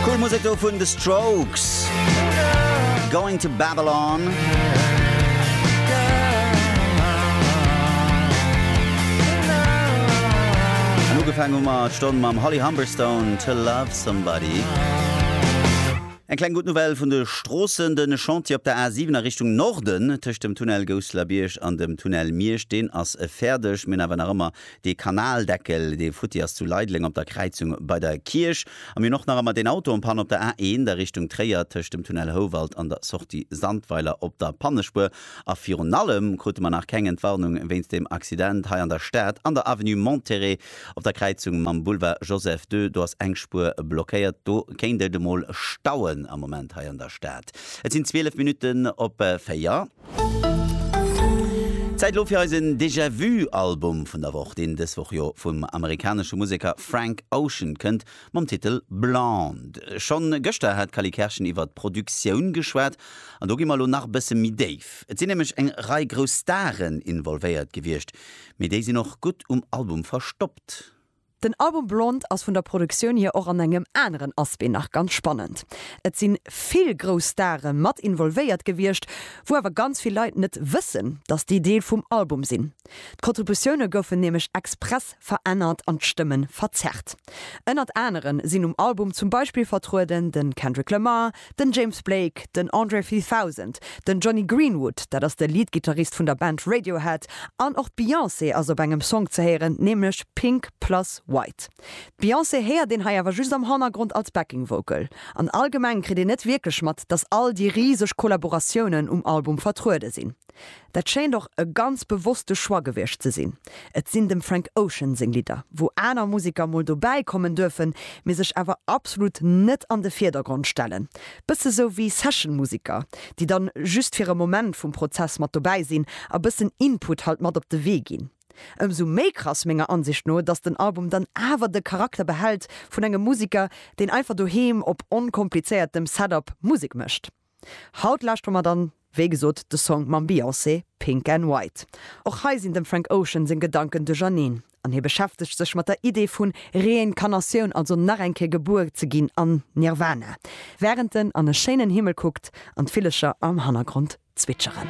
Cool Musek do vun The Strokes. Going to Babylon. An ugefaangen hu mer d'Stonn mam Holly Humberstone, To Love Somebody. Eng kleng gutt Nouvelle vun de Stroossen, De Chantier op der A 7 a Richtung Norden, tëscht dem Tunnel Gousseler Bierg an dem Tunnel Miersch, deen ass fäerdeg. Mir hunn awer nach ëmmer Dee Kanaldeckel, dee futti ass zu Leideleng op der Kräizung bei der Kierch. A mir hunn och nach ëmmer deen Auto en panne op der A1 a Richtung Tréier tëscht dem Tunnel Houwald an der Sortie Sandweiler op der Pannespuer. A virun allem krute mer nach keng Entwarnung wéinst deem Accident hei an der Stad an der Avenue Monterey op der Kräizung mam Boulevard Joseph ii. Do ass eng Spuer blockéiert. Do kéint et emol stauen am Moment hei an der Stad. Et sinn 12 Minutten op 4. Zäit elo fir eisen Déjà Vu Album vun der Woch, deen dës Woch jo vum amerikanesche Museker Frank Ocean kënnt, mam Titel Blonde. Schonn gëschter hat d'Cally Kerschen iwwert d'Produktioun geschwat an do gi mer elo nach e bësse méi déif. Et sinn nämlech eng Rei grouss Staren involvéiert gewiescht, mee déi sinn och gutt um Album verstoppt. Den Album Blond ass vun der Produktioun hier och an engem aneren Aspect nach ganz spannend. Et si vill grouss Stare mat involvéiert gewiescht, wou awer ganz vill Leit net wëssen, datt déi Deel vum Album sinn. D'Kontributioune goufen nämlech express verännert an d'Stëmme verzerrt. Ënnert anere sinn um Album zum Beispill vertrueden de Kendrick Lamar, Den James Blake, den Andre 3000, den Jonny Greenwood, dat ass de Leadgittarist vun der Band Radiohead, an och d'Beyoncé ass op engem Song ze héieren, nämlech Pink Plus White. D'Beyoncé héiert een hei awer just am Hannergrond als Backing Vocal. An allgemeng kritt een net wierklech mat, datt all déi riseg Kollaboratiounen um Album vertruede sinn. Dat schéint och e ganz bewosste Choix gewiescht ze sinn. Et sinn dem Frank Ocean seng Lidder, wou aner Museker mol dobäi kommen duerfen, mee sech awer absolut net an de Virdergrond stellen. Bësse sou wéi Session-Museker, déi dann just fir e Moment vum Prozess mat dobäi sinn a bëssen Input halt mat op de Wee ginn. Ëmsou méi krass menger Ansicht no, dass den Album dann awer de Charakter behält vun engem Museker, deen einfach doheem op onkomplizéiertem Setup Musek mécht. Haut lauschtere mer dann wéi gesot de Song mam Beyoncé Pink and White. Och hei sinn dem Frank Ocean seng Gedanken duercherneen an hie beschäftegt sech mat der Idee vun Reincarnatioun, also nach eng Kéier gebuer ze ginn an Nirvana, wärend en an e schéinen Himmel kuckt an d'Villecher am Hannergrond zwitscheren.